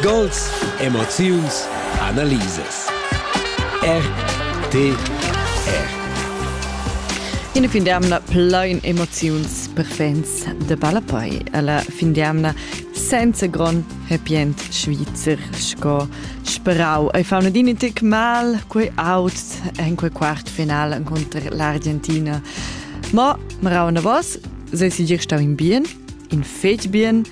Gols, emoziuns, analisas. RTR. Ina fin d'amna plein emoziuns per fans de Ballapei. Alla fin d'amna senza grond happy end svizzer sco sperau. Ei fa una din tic mal quei out en quei quart finale contro l'Argentina. Ma marau na vos, se si dir stau in bien, in fetg bien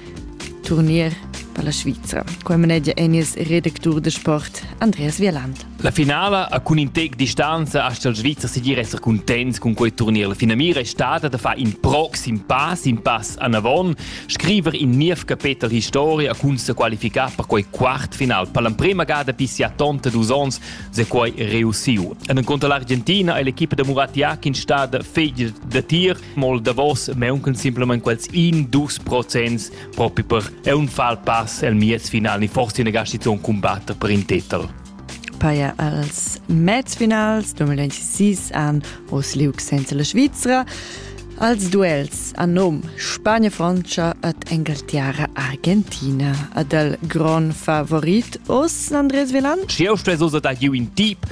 Turnier per la Svizra. Qua manegia Enies redactur de sport Andreas Vierland. La finala a cun in tec distanza hasta il Svizra si dir essere contents con quei turnier. La finamira è stata da far in proxim pass, in pass anavon, scriver in niev capetel historia cun se qualificar per quei quartfinal. Per l'emprema gada pisia tonta dus ons se quei reussiu. En conto l'argentina è l'equipa de Murat Yakin stada fegl da tir mo il davos mauncan simplamain quels in dus procents propi per unfal pass el miez final ni forse una gastizion combatter per in titel. Paia als mezfinals 2026 an Oslug senza la Svizzera als duels a nom Spagna-Francia ad Engaltiara-Argentina. Ad el gron favorit os Andres Velan? Ci eu stess osa da giu in tip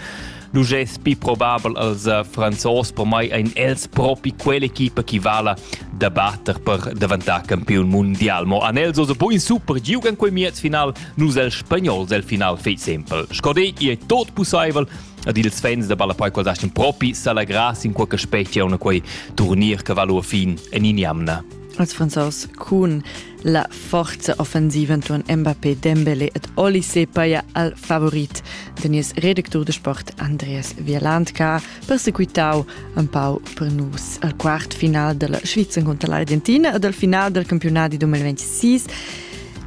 L'ugess pi probabel als Franzos per mai ein els propi quell'equipa chi vala da batter per daventar campiun mundial. Mo an els osa buin super giug en quei miez final, nus el spagnols el final fei sempel. Scodei, i è tot pussaivel ad ils fans da Ballapei quals estin propi s'allegras in qualche specia una quei turnir che valu a fin en in jamna. Als Franzos cun La forza offensiva entuorn Mbappé, Dembélé ed Olise paja al favorit da nies redactur de sport Andreas Vielandka persequitau empau per nus al quart final della Sviza contra l'Argentina e dal final del campionati 2026.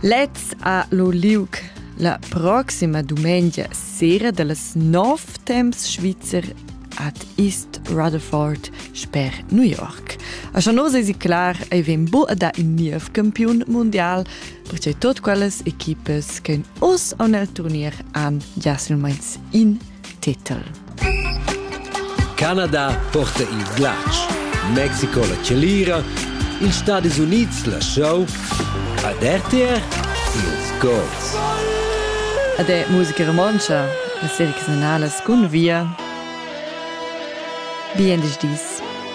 Lez a lo Liug la proxima dumengia sera dallas 9 temps svizzer at East Rutherford sper New York. A Chanos esi clar ei vegn bu da in niev campiun mundial, percei tot quellas equipas che os on el turnier han già silmeins in titel. Canada porta il glatsch, Mexico la celira, ils Stadis Units la show, ad RTR ils goals. Ade musica romontsch Las ediziunalas cun via. Bien dis.